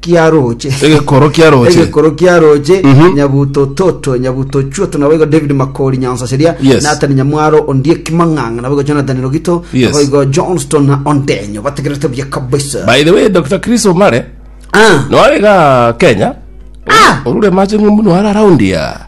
kia roche Egekoro kia roche. egekoro kia roche Mhm. nyabuto toto nyabuto chuoto nabo igo david makori nyansa seria Yes. natani nyamwaro ondie kimang'ang'a nabo igo jonathan rogito Yes. nabo igo johnston na ondenyo bategerete buya kabisa By the way, Dr. Chris Omare, ah. noare ga Kenya. Ah! Orure mache ng'umbu noare around ya.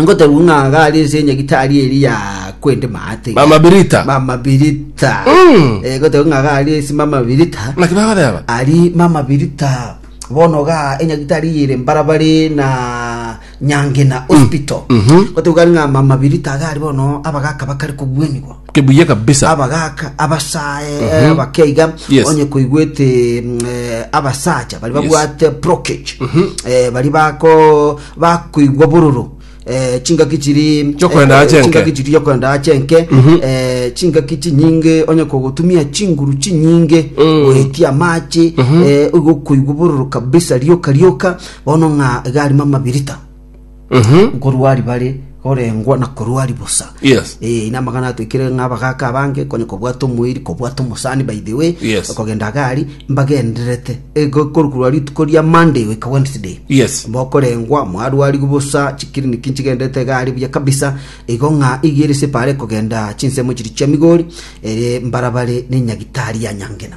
Ngotebu ng'a iga are ase enyagitari eri ya kwende maate. Mama Birita. Mama Birita. Mm. Eh, ngotebu ng'a iga are ase Mama Birita. Naki bagodeba. Ari Mama Birita bono ga enyagitari yere mbarabare na Nyangena Hospital. mhm. Ngotebu gari ng'a Mama Birita iga ari bono abagaka bakare kogwenigwa. Kebuye kabisa. abagaka abasae abakeiga Yes. onye koigwete mm, eh, abasacha bari Yes. babwate brokage Eh, bari bako bakoigwa bororo eh, chingaki chiri Chiokorenda eh, ache enke. chingaki chiri chiokorenda ache enke eh, chingaki chinyinge onye kogotumia chinguru chinyinge goetia amache eh, ogokoigwa bororo kabisa rioka rioka bono ng'a iga arimo amabirita Mhm. nkorwa ribare Korengwa na korua ari bosa. Yes. Eh, ina amagana atwekire ng'a abagaka abange konye kobwata omoiri, kobwata omosani by the way, Yes. kogenda agari mbagendererete Eh, ko- korwa rituko ria Monday goika Wednesday. Yes. Mokorengwa mwarwarigu bosa chikiriniki nchigenderete gari buya kabisa igo ng'a igiere separe kogenda chinsemo chiri chia Migori ere mbarabare ne nyagitari ya Nyangena.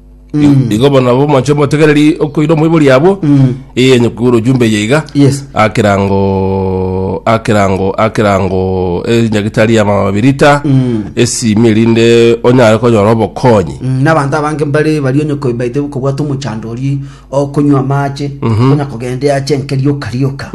I- igo bono nabo omonche omotegereri okoira omoibori abwo eye onye kogora ojumbe eye iga Yes. akerango akerango akerango enyagitari ya mabirita esimi erinde onyare konyora obokonyi Mm, n'abanto abange mbare bari onye koibaite kobwata omochando oria okonywa amache onya kogenda eache enke rioka rioka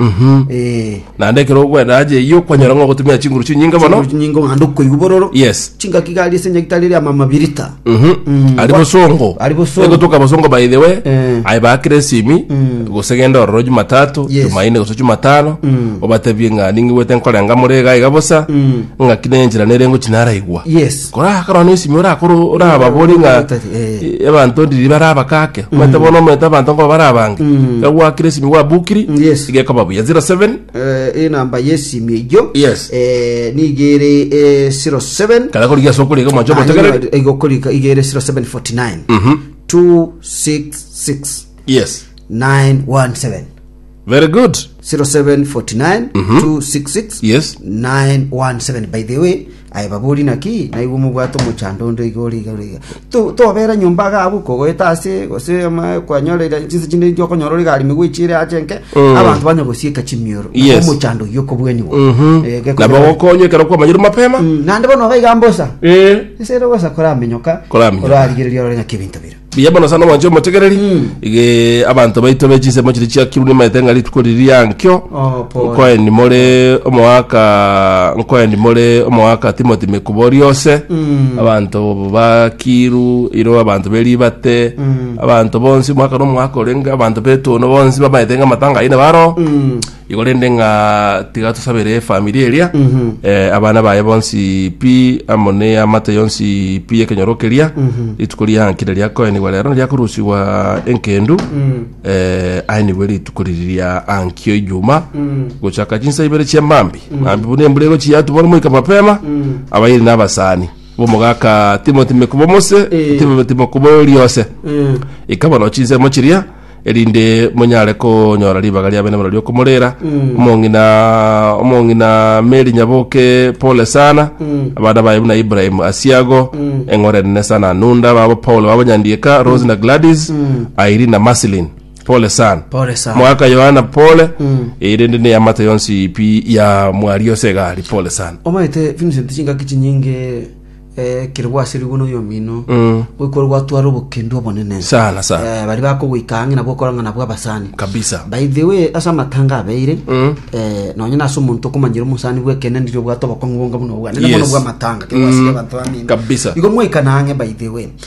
Eh, naende ekero okwenda aje eyio kwanyora ng'a ogotumia chinguru chinyinge mono chinguru chinyingo naende okoigwa bororo Yes. chingaki gari ase enye gitari ria mama birita Mhm. ari bosongo Ari bosongo. egotoka bosongo by the way Eh. aye bakire esimi gose genda ororo jumatatu Yes. jumaine gose jumatano obatebie ng'a ningigwete nkorenga more iga iga bosa ng'aki nenchera nerengo chinaraigwa yes Kora korwa nesimi orakoro orababori ng'a eh, abanto ndiri bare abakake omanyete bono omanyete abanto ngo bare abange Mm. gagwakire esimi gwabukiri Yes. igekoba buya 07 Eh, enamba yesimi eyio Yes. eh, nigere eh, 07 kana korigia ase okoriga omonche omotegereri igokorika igere 0749 Mhm. 266 yes 917 Very good. 0749-266-917 Yes. by the way aye babori naki naigwe omobwate omochando onde iga ore iga ore iga To- tobera nyomba iga abwo kogoeta ase gose ama kwanyorera chinse chinde inche okonyora ore gari megwechire ache nke Mm. abanto banya gosieka chimioro Nabo Yes. omochando oyio okobwaniwa Mhm. Eh, gekonyora- Nabo gokonywa ekero kwamanyire mapema. Mm, naende bono iga mbosa Eh. ase ere ogosa koramenyoka Koramenyoka. orarigereria ore ng'aki ebinto bire Mbuya mono sana omwancho omotegereri Ige abanto baito be chinsemo chiri chiakirwe nimaete ng'a rituko riri ria nkio Oh, pole. nkoeni more omogaka nkoeni more omogaka timoti mekubo riose abanto bakiru iro abanto beribate abanto bonsi omwaka na omwaka orenge abanto betoono bonsi bamaete ng'a amatanga aine baro Igo rende ng'a tiga tosabere efamiri eria, eh, abana baye bonsi pi, amo n'eamate yonsi pi y'ekenyoro keria, rituko riankire riakoenigwa rero riakorusigwa enkendu, eh, aenigwe rituko riri ria ankio ijuma, gochaka chinsa ibere chia mambi, mambi buna embura egochia yatubora omoika mapema, abayiri n'abasani, bomogaka Timothy Mekubomose, Eh. Timothy Mekuboriose, ikaba no chinsemo chiria, erinde monyare konyora ribaga ria benemura riokomorera omong'ina omong'ina meri nyaboke pole sana abana baye buna ibrahim asiago eng'ora enene sana anunda babo paul babo nyandieka rose na gladys airi na maslin pole sana Pole sana. mwaka yohana pole erinde neyamate yonsi pi ya mwari yose egari pole sana omanyete vincent chingaki chinyinge Eh, kere gwasirigwe noyomino Mm. goikwa gwatwara obokendu obonene Sana, sana. Eh, bari bakogoika ang'e nabwo okorang'ana bw'abasani kabisa by the way ase amatanga abeire Mm. eh, nonye nase omonto okomanyire omosani bwekene ndiri obwate obokong'u bonga buna obwane Yes. nabono bw'amatanga Yes. kegwasire abanto bamino Kabisa. igo mwaikana ang'e by the way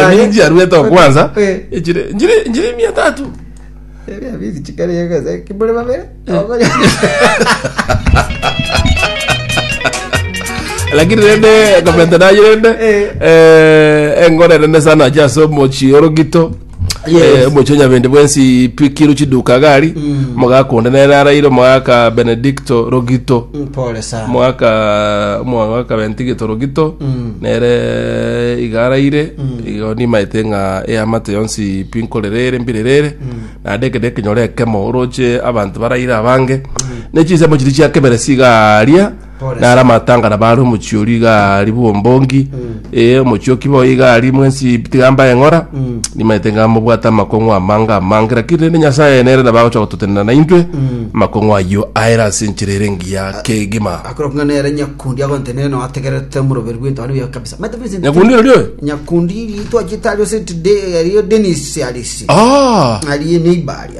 Yamini chiaruete okwanza Eh. echire njire njire mia tatu Eria bizi chikari yakaza kibule babere. Okonya. lakini rende komenta naye rende Eh. eh, engore rende sana acha ase omochi orogito Eh, omochie nyabende bwensi pikiru chiduka gari omogaka onde nere araire omogaka benedicto rogito mpore sana omogaka omogaka bentigito rogito nere iga araire igo nimaete ng'a eamate yonsi pi nkorere ere mbirere ere naende ekero ekenyore ekemo oroche abanto baraire abange ne chinsemo chiria chia keberesi iga aria Nare amatang'ana bare omochie oria iga aria bw'ombongi, ee, omochie okibe oye iga aria mwensi tiga mbaye ng'ora, nimaete ng'a mobwate amakong'u amange amange, lakini rende Nyasaye nere nabo agocha gototenena naintwe, amakong'u ayio aere ase enchera ere engiya kegima. Akorokwa ng'a nere nyakundi agontenena noyo ategerete omoroberi bw'etuba aria oyoka kabisa. Maete Vincent, Nyakundi oria oyo? nyakundi ri twachete aria ase today aria Dennis Alisi. Ah! aria eneiba aria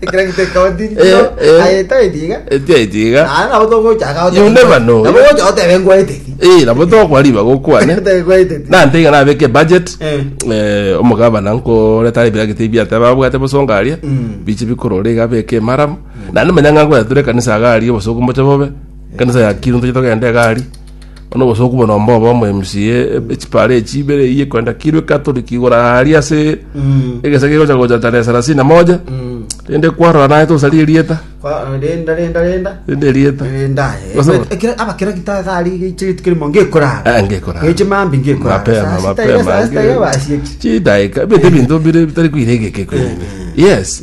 Ekero gitekotirie Eh, kiro, eh. ayeta etiga. etia etiga Naye nabo togochaka You never know. Nabo gocha otebe ngwaeteti. Eh, nabo tokwa riba gokwane Otebe ngwaeteti. nante iga nabeke budget Eh. eh, omogabana nkoreta ebiragita ebi ateba abwate bosonga aria Mm. biche bikorora iga abeke emaramu naende manya ng'a nkoyatura ekanisa iga aria obosuku mboche bobe ekanisa ya kiru ntoche togenda iga aria Bono gose okobua nomba obe omoremsi ye echipara echi ibere eyio ekorenta kirwa ekatoliki igoro aria ase egesa gegocha gocha tarehe sarasini na moja rende kwarora naye tosari erieta Kwa- renda renda renda rende erieta renda aye. Gose- Ekero- ekero abakera gita gari geichire tukere mo ngekorara Ah, ngekorara. eche mambi ngekorara mapema Saa sita iga, mapema saa sita iga basi echi. chidaika ebinto ebinto bire bitari koira egeke koira yes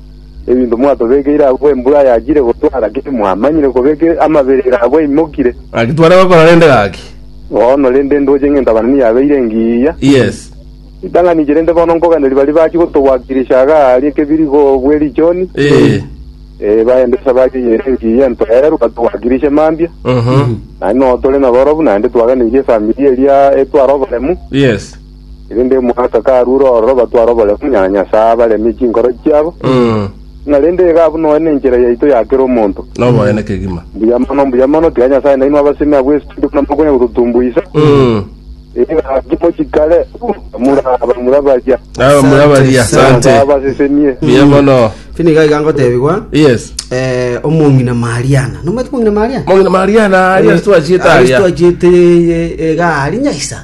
Ebinto mwatobekeire abwo embura yachire gotwara ki mwamanyire kobeka amaberero abwo aimokire? Gaki tware gokora rende gaki. Bono rende ndoche ng'ento abanani yabeire engiya. Yes. Ritang'aniche rende bono nkoganeria baria bachia gotowakilisha iga aaria ekebirigo bwe richooni, Ee. ee, baende esabari eye ere engiya entoerwe batowakilishe mambia. Mhm. Naende nonya tore naborobu, naende twaganeirie efamiri eria etware oboremu. Yes. Erinde omogaka karuure ororo batware oboremu nyara Nyasae abaremie chinkoro chiabo, ng'a rende iga abwo nonya nenchera yaito ya kera omonto. Noboene kegima. Mbuya mono, mbuya mono, tiga Nyasae nainwe abasemi abwo estori buna mokonya gototumbuisa. Iga timochi kare, muraba, murabaria. Nabo murabaria. Asante. Nyasae Asante. abasesemie. Mbuya mono. Fini iga iga ngotebigwa Yes. eh, omong'ina mariana nomwete omong'ina mariana Mong'ina Mariana, Yesu achieta aria. aristo achiete iga ari nyaisa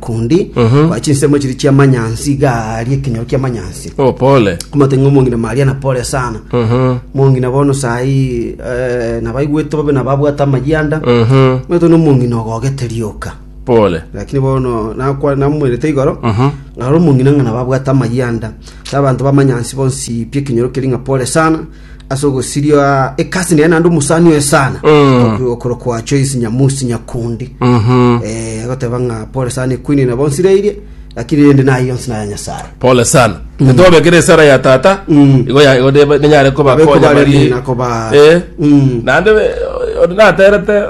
Kundi kwa chinsemo chiria chia manyansi iga aaria ekenyoro kia manyansi. Oh, pole. Komate ng'a omong'ina Maria na pole sana. Omong'ina bono sayi eh, nabaigwete bobe na babwate amayianda. Omanyete na omong'ina ogogete rioka. Pole. Lakini bono nakwa namoerete igoro. Ngaro omong'ina ng'a nababwate amayianda. Sa abanto bamanyansi bonsi pi ekenyoro keri ng'a pole sana. ase ogosiria ekasi nere naende omosani oye sana Mm. okorokwa Joyce Nyamusi Nyakundi Mhm. eh agoteba ng'a pole sana ekwini na bonsi reirie lakini rende naye yonsi naya Nyasaye pole sana netobekere esara ya tata Mm. igo ya- igo nebe- nenyare kobakonya Bekobaremia bari- na koba- Eh. Mm. naende be- ori naterete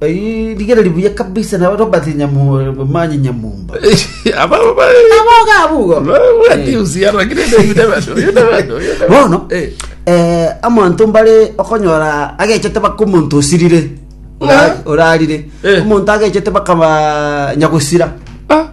Eh, Rigere ribuya kabisa na Robert Nyamumanyi Nyamumba. Aba aba. Aboga abugo. Bati usiara kile David bado. Yona bado. Bono Eh. eh, amonto mbare okonyora agechete baka omonto osirire Ora- Ah. orarire Eh. omonto agechete bakaba nyagosira Ah.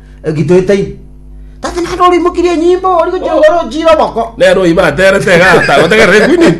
egitoetaine. Tata naende ore oimokirie enyimbo, ori gochia gokora ochire oboko. Nero oibaterete egata gotegerera ekwinini.